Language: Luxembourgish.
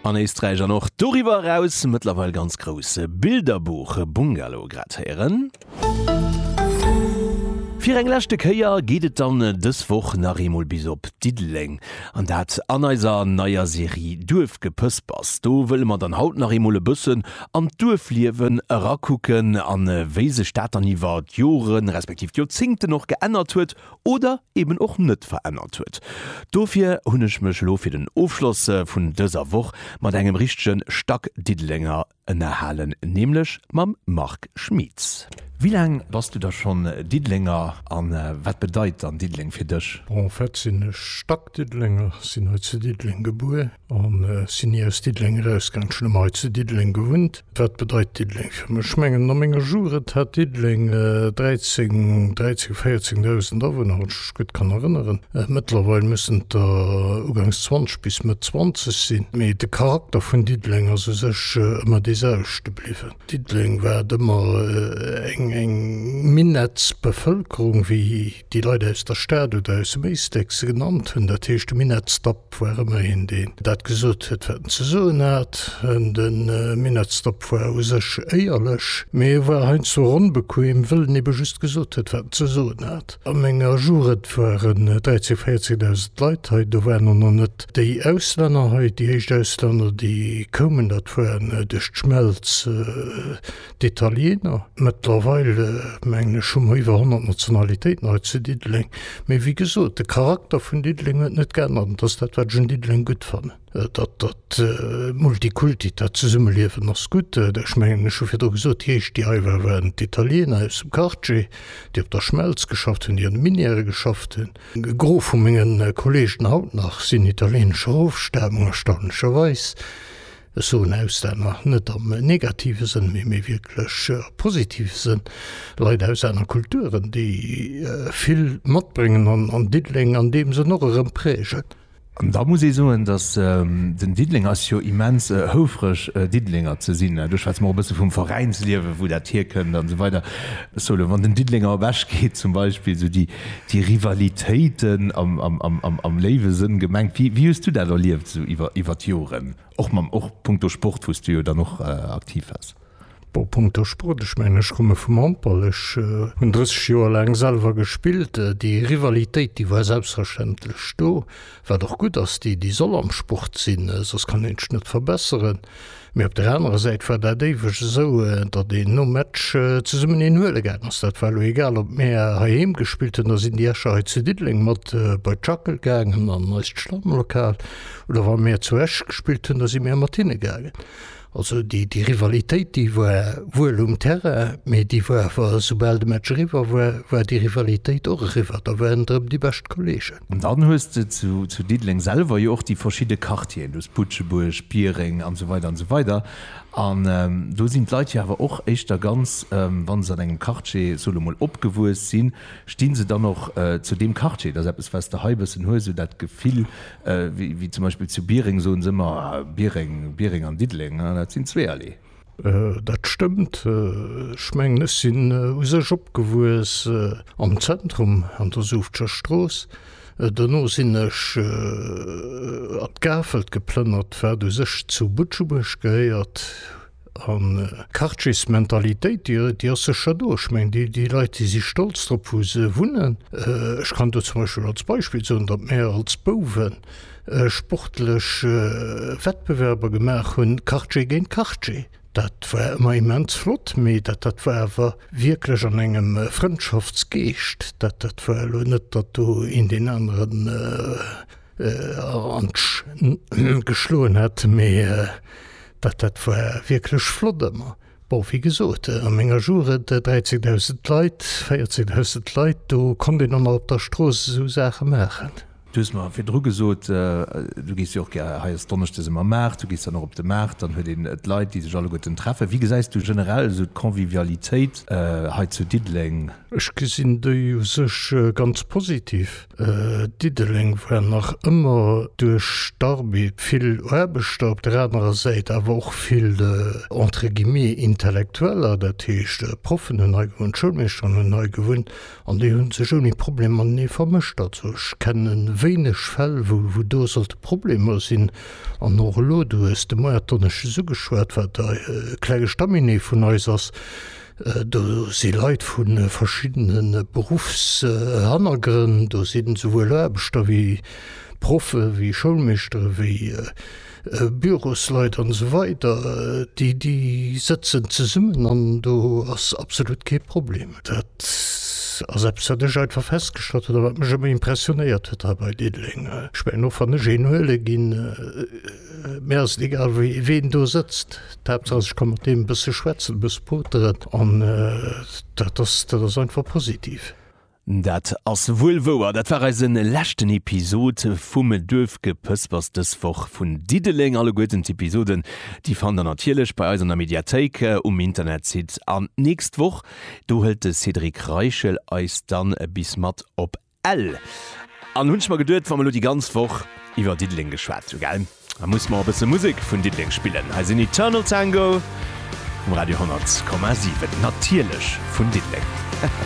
An Éisträich an och doriwwer eraus mëttlerweil ganz grouss. Bilderbuch Bungalow grad héieren. Fir eng leschte Kéier geet et dann dës Woch nach eemol bis op Diddeleng, an dat an eiser neier Serie Duerfgepëspers. Do wëlle mer dann haut nach eemol e bëssen an d'Duerfliewen erakucken, a wéi sech dat dann iwwer d'Joren, respektiv d'Joerzingten och geännert huet. oder eben och net verännert huet. Dofir hunn ech mech elo fir den Ofschloss vun dëser Woch mat engem richtege Stack Diddelenger ënnerhalen, nämlech mam Marc Schmieds. Wéi laang bass du da schonn Diddelenger a wat bedeit dann Diddeleng fir dech? Bon, en fait sinn ech Stack-Diddelenger, sinn hei zu Diddeleng gebuer. An ech sinn ni aus Diddeleng erausgaang. Ech hunn ëmmer hei zu Diddeleng gewunnt. Wat bedeit Diddeleng fir mech? Ech mengen a menger Jugend hat Diddeleng 13, 13, 14 Dausend Awunner, wann ech mech gutt kann erënneren. Mëttlerweil mussen et der ugangs 20 bis Mëtt 20 sinn. Mee de Charakter vun Diddeleng ass u sech ëmmer dee selwechte bliwwen. Diddeleng war et ëmmer eng, eng Minettsbevëlkerung, wéi Déi Leit aus der Stad oder aus dem Éisteck se genannt hunn. Dat heescht, de Minett Stopp war ëmmer een, deen dat gesot huet, wat en ze soen hat. De Minett Stopp war u sech éierlech, mee e war heiansdo onbequem, wëll en ebe just gesot huet, wat en ze soen hat. A menger Jugend waren 13.000, 14.000 Leit hei. Do waren och nach net déi Auslänner hei. Déi éischt Auslänner, déi koumen, dat war duerch d'Schmelz D'Italiener, mëttlerweil mengen ech hu mer iwwer 100 Nationalitéiten hei zu Diddeleng. Mee wéi gesot, de Charakter vun Diddeleng huet net geännert an dat ass dat, wat ech un Diddeleng gutt fannen. Dat dat Multikulti, dat Zesummeliewen ass gutt. Ech mengen, ech hu virdru gesot, déi éischt, déi hei waren, waren d'Italiener aus dem Quartier, déi op der Schmelz geschafft hunn, déi an de Minièrë geschafft hunn. E Gros vu menge Kolleegen haut nach sinn italieenescher Ofstamung, erstaunlecherweis. Ech soen Auslänner net am negative Sënn, mee méi wierklech am positive Sënn, Leit aus aner Kulturen, déi vill matbréngen an Diddeleng an deem Sënn och erëm prägen. An da muss ee soen, datt den Diddeleng ass jo immens houfreg, Diddelenger ze sinn. Ech schwätze mol e bësse vum Veräinsliewen, wou dat hierkënnt an esou weider. Ech soe elo, wann den Diddelenger ewechgeet zum Beispill, esou déi déi Rivalitéiten am léiwe Sënn gemengt. Wéi hues du dat erlieft esou iwwer d'Joren? Och mam och punkto Sport, wou s du jo dann och aktiv waars. Bon, punkto Sport, ech mengen, ech komme vum Handball. Ech hunn 30 Joer laang selwer gespillt. Déi Rivalitéit, déi war selbstverständlech do, wat och gutt ass, déi soll am Sport sinn, soss kann een sech net verbesseren. Mee op der anerer Säit war dat éiweg esou, datt een nom Match zesummen een huele gaangen ass. Dat war elo egal, ob mir heiheem gespillt hunn, da sinn déi Escher hei zu Diddeleng mat bei d'Schackel gaangen an eist Stammlokal, oder wa mir zu Esch gespillt hunn, da si mir mat hinne gaangen. Also déi Rivalitéit, déi war wuel um Terrain, mee déi war awer, esoubal de Match eriwwer war, war déi Rivalitéit och eriwwer. Da waren et erëm déi bescht Kolleegen. An dann hues de zu Diddeleng selwer jo och déi verschidde Quartieren. Du hues Butschebuerg, Biereng an esou weider an esou weider. An do sinn d'Leit jo awer och éischter ganz, wa se an engem Quartier, soe lo mol, opgewuess sinn, sti se dann och zu deem Quartier. Et ass eppes, wat s de hei e bëssen hues, esou dat Gefill, wéi zum Beispill zu Biereng soen se ëmmer, Biereng, Biereng an Diddeleng, dat sinn zweeërlee. Dat stëmmt. Ech mengen, ech sinn u sech opgewuess am Zentrum an der Suuftscher Strooss. Dono sinn ech an d'Gafelt geplënnert, wat u sech zu Butschebuerg gehéiert. An d'Quartiersmentalitéit, déi, déi ass sécher do. Ech mengen, déi, déi Leit, déi si stolz drop, wou se wunnen. Ech kann do zum Beispill als Beispill soen, datt mir als Bouwen sportlech Wettbewerber gemaach hunn, Quartier géint Quartier. Dat war ëmmer immens flott, mee dat dat war awer wierklech an engem Frëndschaftsgeescht. Dat dat war elo net, datt do een deen aneren an d'Sch geschloen hätt, mee dat dat war wierklech flott ëmmer. Bon, wéi gesot, an enger Jour et 13.000 Leit, 14.000 Leit, do konnt een och nach op der Strooss esou Saache maachen. Du hues mer virdru gesot, du gees jo och gär, hei ass Donneschdes ëmmer Maart, du gees dann och op de Maart, dann huet een d'Leit, déi sech alleguerten treffen. Wéi gesäis du generell esou d'Convivialitéit hei zu Diddeleng? Ech gesinn déi u sech ganz positiv. Diddeleng war nach ëmmer duerch d'Arbed vill Aarbechter, op der anerer Säit awer och vill entre guillemets Intellektueller, dat heescht Proffen hunn hei gewunnt, Schoulmeeschteren hunn hei gewunnt an déi hunn sech ouni Problem matenee vermëscht. Also ech kenne wéineg Fäll wou do sollte Problemer sinn. An och elo, du hues de Moier d'Donneschdes ugeschwat, wat e kleng Estaminet vun eis ass, Do si Leit vu verschiddene Beruffshannergrënn, do sinn esouwuel Aarbechter wéi Proffe wéi Schoulmeeschtere wéi Bürosleit an esou weider, déi déi sëtzen zesummen an do ass absolut kee Problem. Dat ass eppes wat ech einfach festgestallt hunn a wat mech ëmmer impressionéiert huet hei bei Diddeleng. Ech mengen och wann ech een huele ginn, Mir ass et egal ween do sëtzt, d'Haaptsaach ech ka mat deem e bësse schwätzen, e bësse poteren an dat ass dat ass einfach positiv. Dat ass wuel wouer. Dat war eise leschten Episod vum Duerfgepëspers dës Woch vun Diddeleng. Alleguerten d'Episoden, déi fannt der natierlech bei eis an der Mediathéik um Internetsite. An d'nächst Woch, do hëlt de Cédric Reichel eis dann bis mat op Ell. An hunn ech mer geduet, wa mer elo déi ganz Woch iwwer Diddeleng geschwat hu gell, da musse mer och e bësse Musek vun Diddeleng spillen. Hei sinn Eternal Tango um Radio 100,7, natierlech vun Diddeleng.